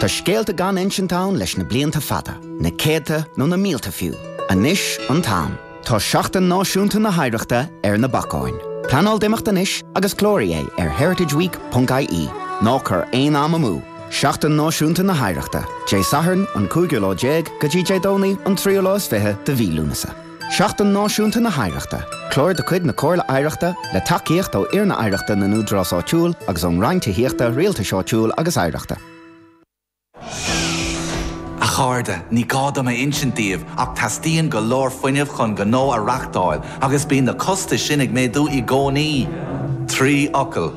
Tá scéalta gan insint ann leis na blianta fada, na céadta nó na mílte fiú. Anois an t-am. Tá Seachtain Náisiúnta na hOidhreachta ar na bacáin. Pleanáil d'imeacht anois agus cláraigh é ar heritageweek.ie. Ná cuir aon am amú. Seachtain Náisiúnta na hOidhreachta, Dé Sathairn an cúigiú lá déag go dtí Dé Domhnaigh an tríú lá is fiche de mhí Lúnasa. Seachtain Náisiúnta na hOidhreachta, clár de chuid na Comhairle Oidhreachta, le tacaíocht ón Líonra Oidhreachta na nÚdarás Áitiúil agus ón Roinn Tithíochta, Rialtais Áitiúil agus Oidhreachta. A chairde, ní gá dom a insint daoibh ach teastaíonn go leor fuinnimh chun gnó a reachtáil agus bíonn na costais sin ag méadú i gcónaí. Trí fhocal.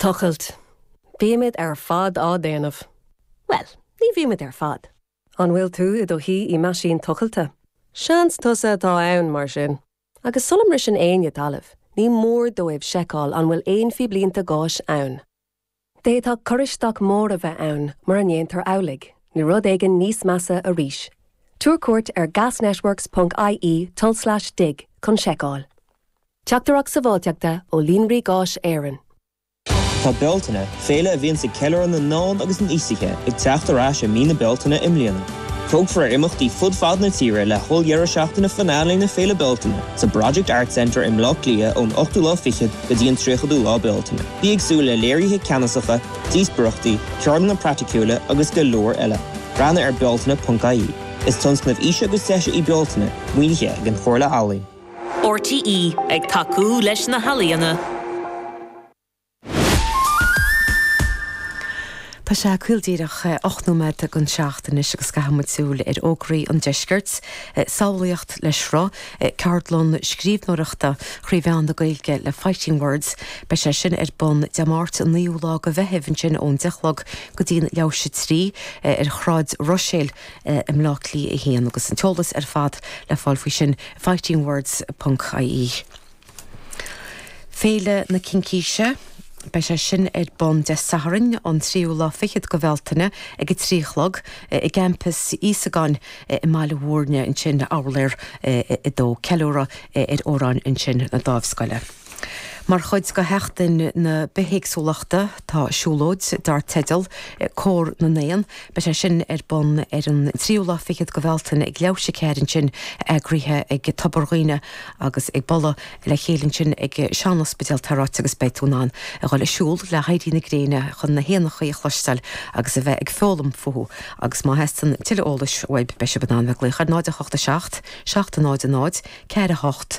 Tochailt. Bímid ar fad á déanamh. Bhuel, ní bhímid ar fad. An bhfuil tú i do shuí i meaisín tochailte? Seans gur tusa atá ann, mar sin. Agus sula mbriseann éinne talamh, ní mór dóibh seiceáil an bhfuil aon phíblínte gáis ann. D'fhéadfadh cur isteach mór a bheith ann mura ndéantar amhlaidh, nó rud éigin níos measa arís. Tabhair cuairt ar gasnetworks.ie tulslais dig chun seiceáil. Teachtaireacht Sábháilteachta ó Líonraí Gáis Éireann. Tá Bealtaine, féile a bhíonns ag ceiliúradh na n-ealaíon agus an aosaithe, ag teacht ar ais i mí na Bealtaine i mbliana. Tógfar ar imeachtaí fud fad na tíre le holl-deireadh seachtaine finale na Féile Bealtaine sa Project Arts Centre i mBleá Cliath ón ochtú lá fichead go dtí an tríochadú lá Bealtaine. Bí ag súil le léirithe ceannasacha, díospaireachtaí, ceardlanna praiticiúla agus go leor eile. Breathnaigh ar Bealtaine.ie Is tionscnamh Aois agus Deis í Bealtaine, maoinithe ag an Chomhairle Ealaíon. RTÉ ag tacú leis na healaíona. Tá sé caol díreach ocht nóiméad dhon seacht anois agus caithfidh muid súil ar fhógraí an deiscirt, Samhlaíocht le Sruth, ceardlann scríbhneoireachta thrí mheán na Gaeilge le Fighting Words. Beidh sé sin ar bun Dé Máirt an 9ú lá go Mheithimh ansin ón deich chlog go dtí'n leath théis 3, ar Shráid Ruiséil. i mBleá Cliath 1 agus an t-eolas ar fad le fáil faoi sin fightingwords ponc ie Féile na Cincíse. Beidh sé sin ar bun Dé Sathairn an tríú lá fichead go Bhealtaine ag a trí a chlog i gCampas Íosagáin i mBaile Mhúirne ansin, uimhir a 2. Ceiliúradh ar amhráin ansin na Dáimhscoile. Mar chuid de Sheachtain na Bithéagsúlachta tá siúlóid dar teideal 'Cór na nÉan'. Beidh sé sin ar bun ar an tríú lá fichead go Bhealtaine ag leath théis a ceathair ansin, eagraithe ag Tobar Dhuibhne agus ag bualadh le chéile ansin ag Sean-Ospidéal an Daingin agus beidh tú in ann a dhul ag siúl le héirí na gréine chun na héanachaí a chloisteáil agus a bheith ag foghlaim fúthu agus má theastaíonn tuilleadh eolais uaibh beidh sibh in ann bheith ag glaoch ar 0 8 7 7 0 0 4 8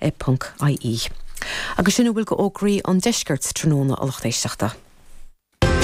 e.ie. Agus sin a bhfuil go fhógraí an deiscirt tráthnóna a lucht éisteachta.